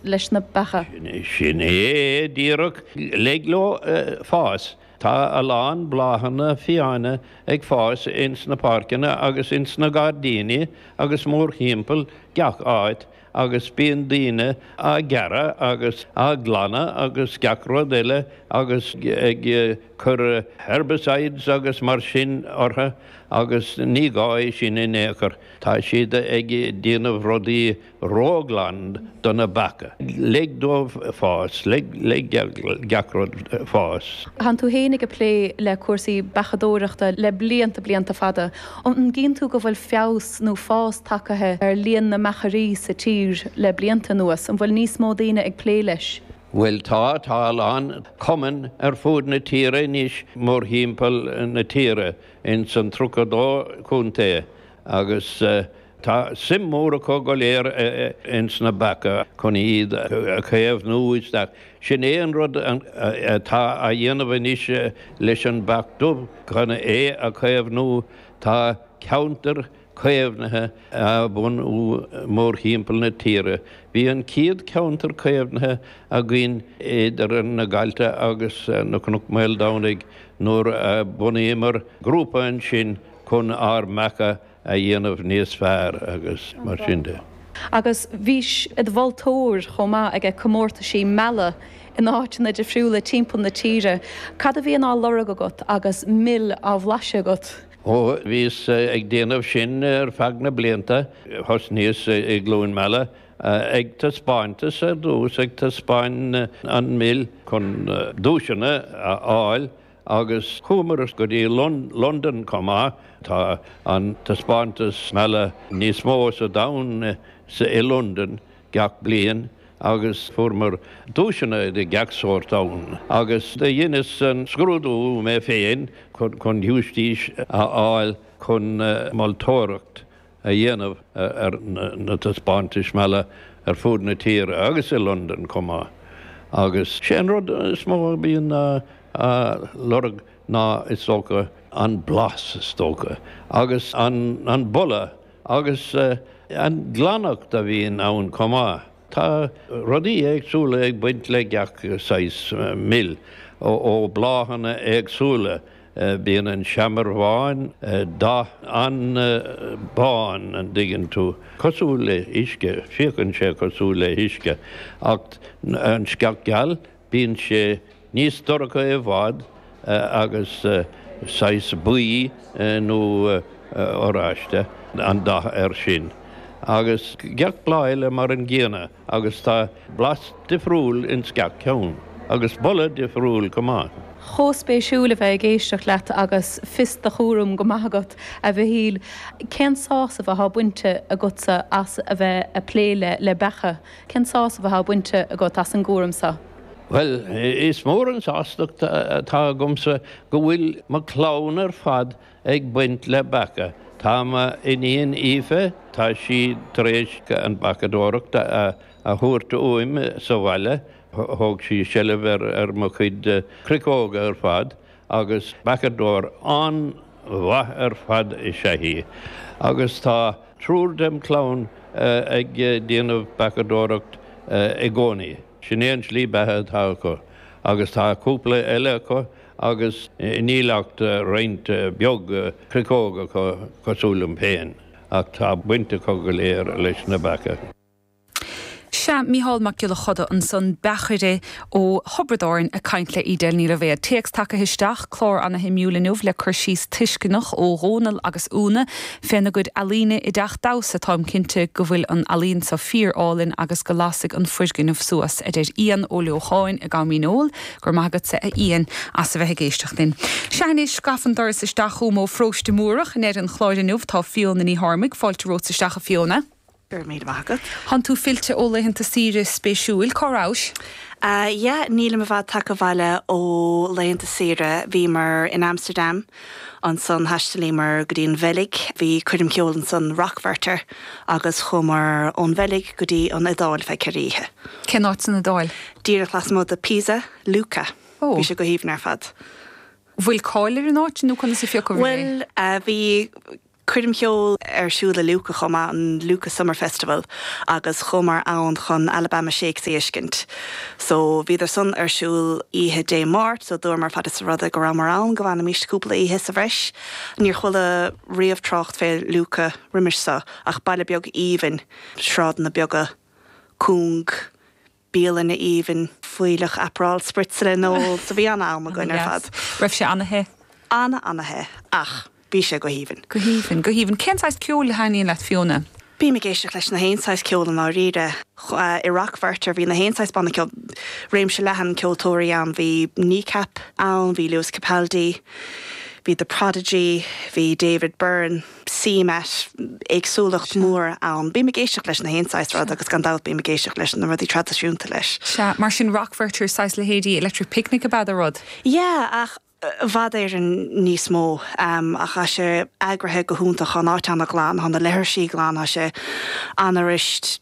leis na beacha. Sin é díreach. Lig leo fás. Tá a lán bláthanna fiáine ag fás ins na páirceanna agus ins na gairdíní agus mórthimpeall gach áit agus bíonn daoine á gearradh agus á glanadh agus gach rud eile agus ag cur herbicides agus mar sin orthu agus ní gá é sin in aon chor. Tá siad ag déanamh rudaí ró-ghlan do na beacha. Lig dóibh fás, lig do gach rud fás. Tánn tú féin ag plé le cúrsaí beachadóireachta le blianta, blianta fada. An gcíonn tú go bhfuil feabhas nó fás tagaithe ar líon na mbeachairí sa tír le blianta anuas? An bhfuil níos mó daoine ag plé leis? Bhuel tá, tá a lán cumann ar fud na tíre anois, mórthimpeall na tíre, ins an tríocha dó contae Agus tá suim mhór acu go léir ins na beacha chun iad a chaomhnú isteach. Sin é an rud atá á dhéanamh anois leis an Bheach Dubh, chun é a chaomhnú. Tá ceantair chaomhnaithe á bhunú mórthimpeall na tíre. Bhí an chéad cheantar caomhnaithe againn idir na Gailte agus na Cnoc Mhaoldomhnaigh nuair a bhunaíomar grúpa ansin, chun ár mbeacha a dhéanamh níos fearr agus mar sin de. Agus bhís id mholtóir chomh maith ag comórtaisí meala in áiteanna difriúla timpeall na tíre. Cad a bhíonn á lorg agat agus mil á bhlaiseadh agat? Ó bhíos ag déanamh sin ar feadh na blianta, thosnaíos i gCluain Meala ag taispeántas ar dtús, ag taispeáin an mil chun duaiseanna a fháil Agus chuamar go dtí Londain chomh maith. Tá an taispeántas meala níos mó sa domhan i Londain gach bliain agus fuaireamar duaiseanna de gach sórt ann. Agus do dheineas an scrúdú mé féin chun teistis a fháil chun moltóireacht a dhéanamh ar na taispeántais meala ar fud na tíre agus i Londain chomh maith agus sé an rud is mó a bhíonn á lorg ná is dócha an blas is dócha agus an boladh agus an ghlaineacht a bhíonn ann chomh maith. Tá rudaí éagsúla ag baint le gach saghas mil ó bláthanna éagsúla Bíonn an seamair bhán, dath an-bhán an dtuigeann tú, cosúil le huisce, féachann sé cosúil le huisce, ach an sceach gheal bíonn sé níos dorcha i bhfad agus saghas buí nó oráiste an dath air sin, agus gach bláth eile mar an gcéanna. agus tá blas difriúil ins gach ceann, agus boladh difriúil go maith. Chomh spéisiúil a bheith ag éisteacht leat agus fios do chúraim go maith agat, a Mhichíl. Cén sásamh athá bainte agatsa as a bheith a' plé le, le beacha? Cén sásamh athá bainte agat as an gcúram so? Bhuel, is mór an sástacht atá agamsa go bhfuil mo clann ar fad ag baint le beacha. Tá m'iníon Aoife, tá sí tar éis an beachadóireacht a thógaint uaim sa bhaile, thóg sí seilbh ar mo chuid cruiceóga ar fad agus beachadóir an-mhaith ar fad is ea í agus tá triúr dem chlann ag déanamh beachadóireacht i gcónaí, sin é an slí beatha atá acu agus tá cúpla eile acu agus níl ach roinnt beag cruiceóg acu cosúil liom féin, ach tá baint acu go léir leis na beacha. Sea, Mícheál Mac Giolla Coda ansan, beachaire ó Thiobraid Árann ag caint le Edel Ní Loibhéad. Téacs tagtha isteach, clár ana-shuimiúil inniu le cur síos tuisceanach ó Dhónal agus Úna féna gcuid ealaíne i dTeach Damhsa, táim cinnte go bhfuil an ealaíon seo fíor-álainn agus go lasfaidh an foirgneamh suas, a deir Ian Ó Leocháin i gCam Dhíneol. Go raibh maith agatsa, a Ian, as a bheith ag éisteacht linn. Sea anois, gafa an doras isteach chugam ó Pharóiste Mórdhach i ndeireadh an chláir inniu. Tá Fiona Ní Ghairbhí fáilte romhatsa isteach, a Fiona. Go raibh míle maith agat. Tánn tú fillte ó laethanta saoire spéisiúil. Cá rabhais? Yeah, nílim i bhfad tagtha abhaile ó laethanta saoire. Bhíomar in Amsterdam. Ansan thaistealaíomar go dtí an Bheilg. Bhí coirm cheoil ansan, Rock Werchter, agus chuamar ón Bheilg go dtí an Iodáil ar feadh ceithre oíche. Cén áit san Iodáil? Díreach lasmuigh de Pisa, Lucca. Ó. Bhí sé go haoibhinn ar fad. Bhfuil cáil ar an áit nó conas a phiocadh é? Bhuel, bhí coirm cheoil ar siúl i Lucca chomh maith, an Lucca Summer Festival, agus chuamar ann chun Alabama Shakes a fheiscint. So bhíodar san ar siúl oíche Dé Máirt, so dúramar fad is rud é go rabhamar ann go bhfanaimis cúpla oíche sa bhreis. Níor chuala riamh trácht fé Lucca roimis so, ach baile beag aoibhinn, sráideanna beaga, cúng, bialanna aoibhinn fuílleach Aperol spritz le n-ól. So bhí an-am againn ar fad. Ana-dheas. Raibh sé ana-the? Ana, ana-the. Ach bhí sé go haoibhinn. Go haoibhinn, go haoibhinn. Cén saghas ceoil a thaitníonn leat, Fiona? Bím ag éisteacht leis na haon saghas ceoil i ndáiríre. I Rock Werchter bhí na haon saghas banna ceoil, réimse leathan ceoltóirí ann. Bhí Kneecap ann, bhí Lewis Capaldi, bhí The Prodigy, bhí David Byrne. CMAT, éagsúlacht mhór ann. Bím ag éisteacht leis na haon saghas rud agus gan dabht bím ag éisteacht leis na rudaí traidisiúnta leis. Sea, mar sin Rock Werchter saghas leithéidí Electric Picnic ab ea an rud? Yeah, ach i bhfad Éireann níos mó. Ach tá sé eagraithe go hiontach, tá an áit ana-ghlan, tá na leithrisí glan, tá sé an-fhuirist.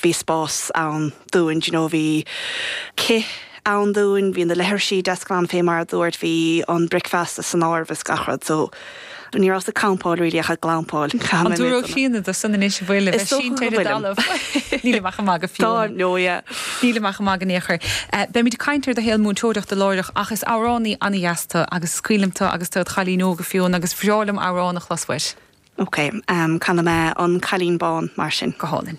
bhí spás ann dúinn, you know bhí cith ann dúinn, bhí na leithrisí deas glan fé mar a dúirt, bhí an bricfeasta san áireamh is gach rud so ní rabhas ag campáil really ach ag glampáil. An dtabharfadh Clíona dó san anois a bheith sínte ar an dtalamh. Nílim ach ag magadh fiú. Tá, no yeah. Nílim ach ag magadh in aon chor. Eh beimid ag caint ar do shaol múinteoireachta láithreach ach is amhránaí ana dheas tú agus is cuimhin liom tú agus tú id chailín óg a Fióna agus bhreá liom amhrán a chlos uait. OK, canfaidh mé An Cailín Bán, mar sin. Go hálainn.